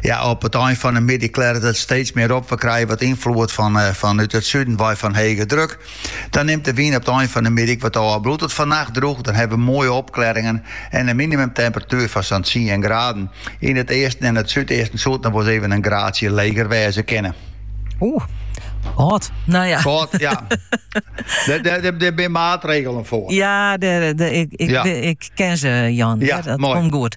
Ja, op it ein fan 'e middei klearret it steeds mear op. We krije wat ynfloed fan eh, fanút it suden wei fan hege druk. Dan nimt de wyn op it ein fan 'e middei ek wat ôf. Bliuwt it fannacht droech, dan hawwe we moaie opklearringen en in minimumtemperatuer fan sa'n tsien graden. Yn it easten en it súdeasten soe it noch wol ris even in graadsje leger wêze kinne. Oeh, Hot, nou ja. Hot, ja. Daar zijn maatregelen voor. Ja, de, de, ik, ik, ik, ken ze, Jan. Ja, dat mooi. komt goed.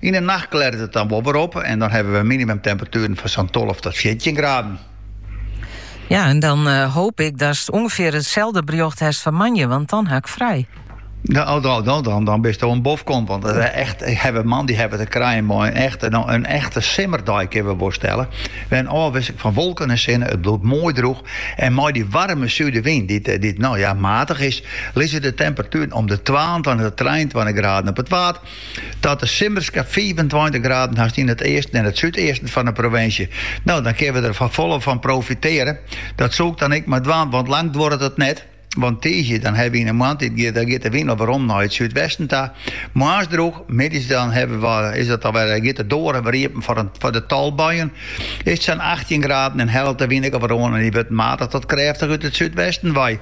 Yn 'e nacht klearet it dan wol wer op en dan hawwe we minimumtemperatueren fan sa'n tolve tot fjirtjin graden. Ja, en dan eh, hoop ik datst ûngefear itselde berjocht hast foar moandei, want dan ha ik frij. Dan, oh, dan, dan, dan, dan bist wol in bofkont. Want it eh, echt, eh, hawwe moandei hawwe te krijen mei in echte, no, in echte simmerdei kinne we wol stelle. Mei in ôfwisseling fan wolken en sinne. It bliuwt moai droech. En mei dy waarme sudewyn, dy't, eh, dy't no ja, matich is, lizze de temperatueren om de twaentweintich tot trijentweintich graden op it Waad. Tot de simmerske fiifentweintich graden hast yn it easten en it súdeasten fan de provinsje. No, dan kinne we der folle fan profitearje. Dat soe ik dan ek mar dwaan, want lang duorret it net. Want tiisdei dan hawwe wy yn 'e moarntiid giet, dan giet de wyn al werom nei it súdwesten ta. Moarns droech, middeis dan hawwe we, is it alwer, eh, giet de doarren wer iepen foar in, foar in tal buien. Is it sa'n achttjin graden en hellet de wyn ek al wer oan en dy wurdt matich tot krêftich út it súdwesten wei.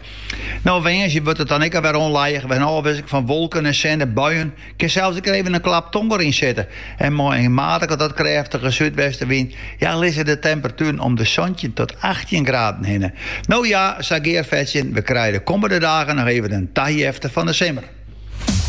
No woansdei wurdt it dan ek alwer ûnlijich mei in ôfwisseling fan wolken en sinne en buien. Kin sels ek even in klap tonger yn sitte. En mei in matige tot krêftige súdwestenwyn ja lizze de temperatueren om de santjin tot achttjin graden hinne. No ja, sa gearfetsjend, we krije de kommende dagen noch even in tajefte fan de simmer.